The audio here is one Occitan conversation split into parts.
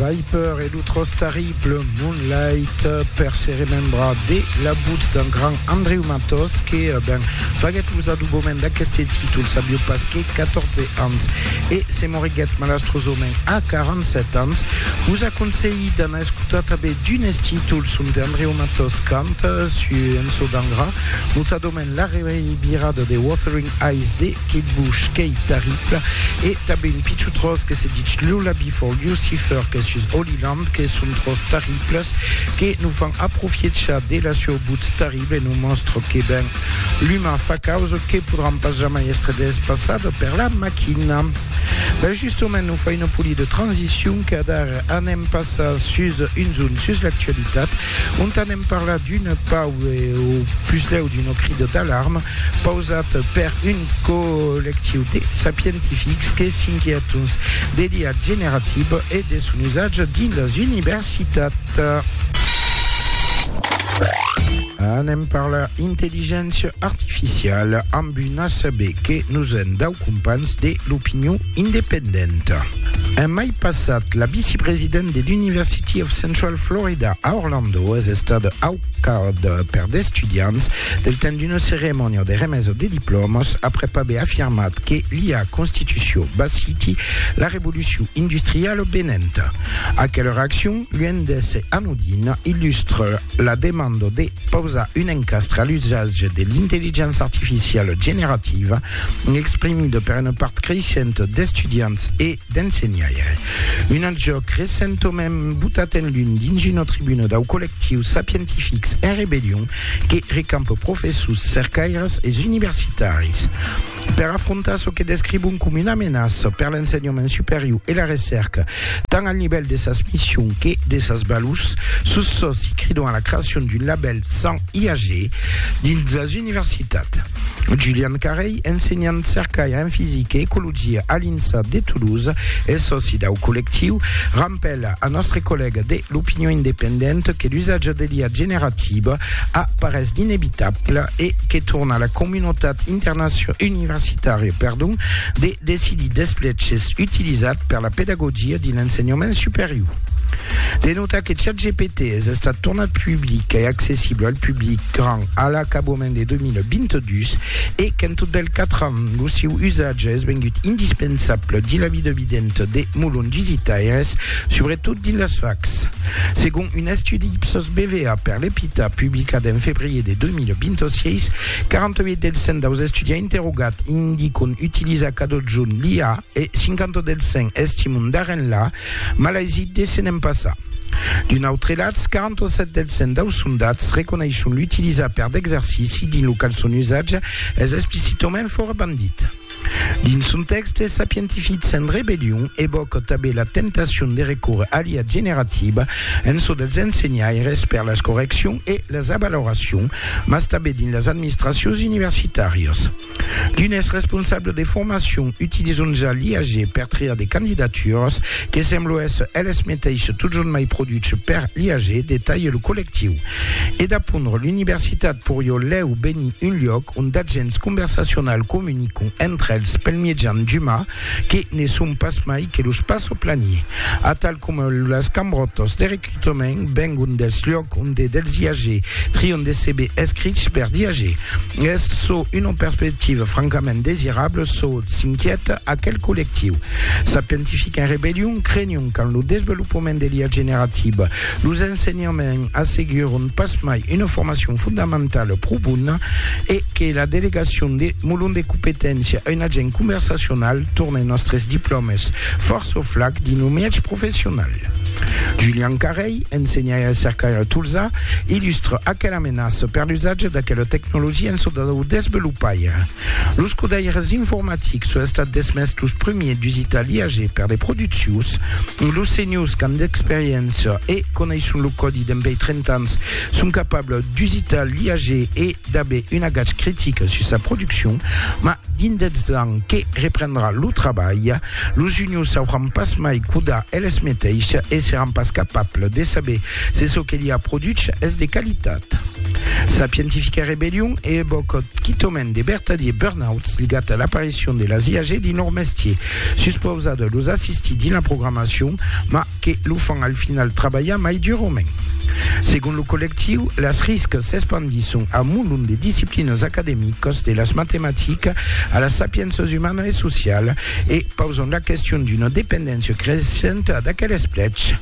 Viper e lo tros terrible Moonlight per se remembrar de l'abuts d'un grand Andreu Matos que eh, ben, faguèt los aduboments d'aqueste títol sabiu pas que 14 ans e se moriguèt malastrosament a 47 ans. Vos aconselhi d'anar escotar tanben d'unes títols ont Andreu Matos canta, su Ençò d'Angra, notadament L'arremeni birada de Wuthering Heights de Kate Bush qu'ei tarribla e tanben un pichon tròç que se ditz Lula Before Lucifer qu'es sus Holy Land que son tròç tarriblas que nos fan aprofiechar de la sieu butz tarribla e nos mòstra que ben l'uman fa causa que podràn pas jamai èstre despassada per la maquina. Ben justament nos fa una polida de transicion qu'adara anem passar sus un zon sus l'actualitat ont anem parlar d'un pau e o puslèu d'una crida d'alarma pausat per un collectiu de sapientifics que s'inquiètons de l'IA generativa e de son usatge dins las universitats. Anem parlar intelligéncia artificiala amb un ACB que nos en dau companhs de l'opinion Independent. En mai passat, la vicepresident de l'University of Central Florida a Orlando es estada au cap per d'estudiants del temps d'una ceremònia de remesa de diplòmas aprèp aver afirmat que lia constitucion basiti la revolucion industriala venenta. Aquela reaccion, luènh d'èsser anodina, illustra la demanda de pausar un encastre a l'usatge de l'intelligença artificiala generativa exprimida per una part creishenta d'estudiants e d'ensenhaire. Un alt jòc recentament botat en lum dins una tribuna dau collectiu Sapientifics en rebellion que recampa professors, cercaires e universitaris per afrontar çò que descrivon coma una menaça per l'ensenhament superior e la recèrca, tant al nivèl de sas missions que de sas valors. Sus çò, s'i cridon a la creacion d'un labèl 100 IAG dins las universitats. Julian Carey, ensenhant cercaire en fisica e ecologia a l'INSA de Toulouse e sòci dau collectiu, rampèla a nòstre collèga de l'Opinion independente que l'usatge de l'IA generativa a parés d'inevitable e que torna a la comunotat universitària de decidir des pleches utilizats per la pedagogia dins l'ensenhament superior. De notar que ChatGPT es estat tornat public e accessible al public grand a l'acabament de 2022 e qu'en tot del 4 ans lo siu usatge es vengut indispensable dins la vida videnta de molons visitaires, subretot dins las facs. Segon un estudi Ipsos BVA per l'EPITA publicat en febrier de 2026, 48 del 100 daus estudiants interrogats indicon utilizar cadotjorn l'IA e 50 del 100 estimon d'arren la Mas las ides se n'en passa. D'un autre latz, 47 dels 100 daus sondats reconeishon l'utilizar per d'exercici dins lo qual son usatge es explicitament fòra bandit. Dins son tèxte, Sapientific sen rebellion evòca tanben la tentacion de recórrer a l'IA generativa en çò dels ensenhaires per las correccions e las avaloracions, mas tanben dins las administracions universitàrias. D'unes responsables de formacion utilizon ja l'IAG per triar de candidatures, que semblo èsser eles meteisses totjorn mai produchs per l'IAG, detalhe lo collectiu. E d'apondre l'universitat porió lèu benir un luòc ont d'agents conversacionals comunicon entre els pel miejan d'uma, que ne son pas mai que los passo planiers, atal coma las cambròtas de recrutament vengon dels lhòcs onde dels IAG trion de CV escrichs per d'IAG. Es çò una perspectiva francament desirabla çò s'inquièta aquel collectiu. Sapientific en rebellion, crenion qu'en lo desvelopament de l'IA generativa, Los ensenhaments asseguron pasmai una formacion fondamentala pro bona e que la delegacion de Molon de Competéncia, un agent conversacional, torne nòstres diplòmes fòrça au flac dins lo mièg professional. Julian Carrei, ensenhaire e cercaire a Tolzà, illustra aquela menaça per l'usatge d'aquela tecnologia en çò dau desvelopaire. Los codaires informatics son estats desmés los primiers dus italiage per de produccions. Los senhors qu'an d'experiéncia e coneisson lo còdi dempèi 30 ans son capables dus italiage e d'aver un agatge critic sus sa produccion. Mas dins dètz ans que reprendrà lo trabalh, los juniors sauràn pas mai codar eles meteisses e seràn pas capables de saber Se çò que li a produch es de qualitat. Sa pientifica rebellion e ebocòt quitòment de bertadiers burnouts ligat a l'aparicion de las IAG dins lor mestier, suspausar de los assistir dins la programacion, mas que lo fan al final trabalhar mai durament. Segon lo collectiu, las riscas s'espandisson a molon de disciplinas academicas, de las matematicas a las sapiénças umana e sociala, e pausan la question d'una dependéncia creissenta d'aquel esplech.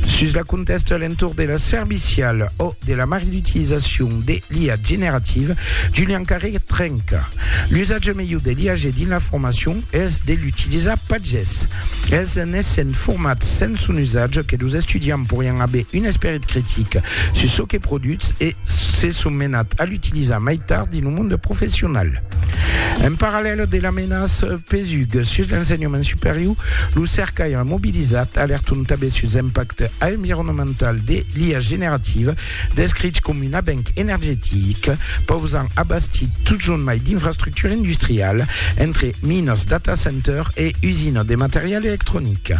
Sus la contèsta a l'entorn de la servicial o de la marge d'utilizacion de l'IA generativa, Julian Carré trenca. L'usatge melhor de l'IAG dins la formacion es de l'utilizar pas ges. Es en essent formats sens son usatge que los estudiants porián aver un esperit critic sus çò que produtz e se son menats a l'utilizar mai tard dins lo monde professional. En parallèl de la menaça pesuga sus l'ensenhament superior, lo cercaire mobilizat alerton tanben sus l'impacte environnemental de l'IA generativa, descrich coma un avenc energetic, pausant a bastir totjorn mai d'infrastructura industriala, entre minas, data center e usinas de material electronic.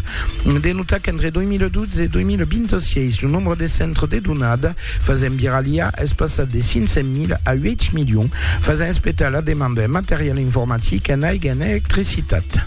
De notar qu'entre 2012 e 2026, lo nombre de centres de donada Fasent virar l'IA es passat de 500 mil a 8 milions, fasent espetar la demanda en material informatic, en aiga, en electricitat.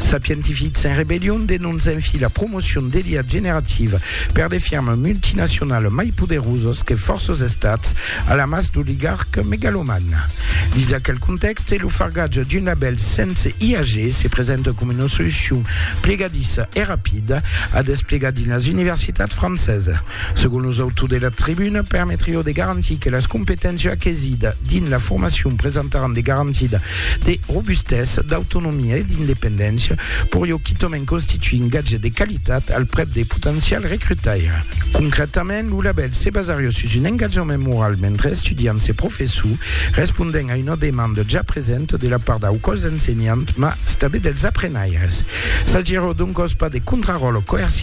Sapientifics en rebellion denoncen fi la promocion de l'IA generativa per de firmas multinacionalas mai poderosas que fòrças estats, a la mas d'oligarques megalomans. Dins d'aquel contèxte, lo fargatge d'un labèl sense IAG se presenta coma una solucion plegadissa e rapida a desplegar dins las universitats francesas. Segon los autors de la tribuna, permetrió de garantir que las competéncias aquesida dins la formacion presentaràn de garantida de robustesa, d'autonomia e d'independéncia, porió quitament constituir un gatge de qualitat al prèp de potencial recrutaire. Concrètament, lo labèl se basarió sus un engatjament moral mentre estudiants e professors respondèn a una demanda ja presenta de la part dau còs ensenhant mas tanben dels aprenaires. S'agiró doncòs pas de contraròtle coerciu,